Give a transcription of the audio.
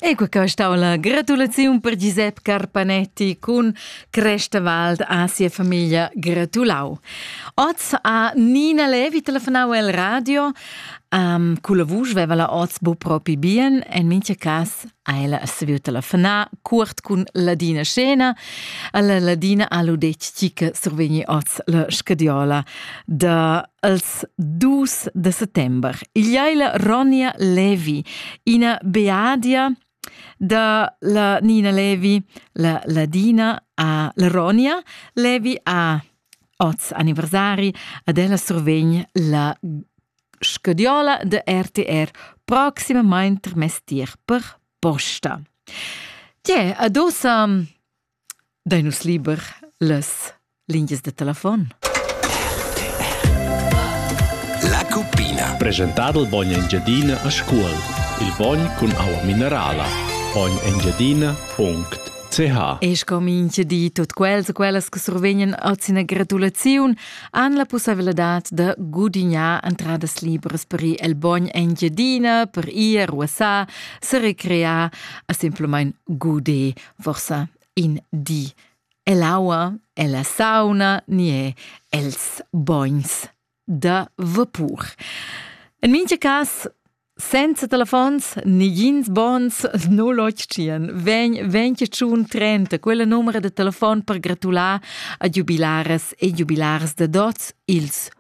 Ecco qua stau la gratulaziun per Giuseppe Carpanetti cun Crestevald a sia famiglia gratulau. Oz a Nina Levi telefonau el radio. Um, culla vusch veva la oz bu propi bien, en mincha cas ha ella saviu telefonar curt cun Ladina Scena. Alla Ladina ha lu detg chi che survegni oz la scadiola da Als dus de settember igl la Ronja Levi, ina beadia da la Nina Levi, la Ladina a la Ronja Levi a oz anniversari ad ella survegn la scadiola de RTR proximamain trimestier per posta. Tie, adosa Dain nus liber las lingias da telefon? La cuppina. Presentà dal bogn Engiadina a Scuol. Il bogn cun aua minerala. Bognengiadina.ch E scomince di tut quels e quellas che survegnan oz ina gratulaziun han la pussaiveladad da gudignar entradas libras per ir el bogn Engiadina, per ir a ruassar, se recrear a simplamain guder forsa in di ell'aua, ella sauna ni è els bogns da vapur. En mincha cas senza telefons, nigins bons non l'occian. Ven, ven che tschun trenta, quella numera de telefon per gratular a jubilaras e jubilars de dots ils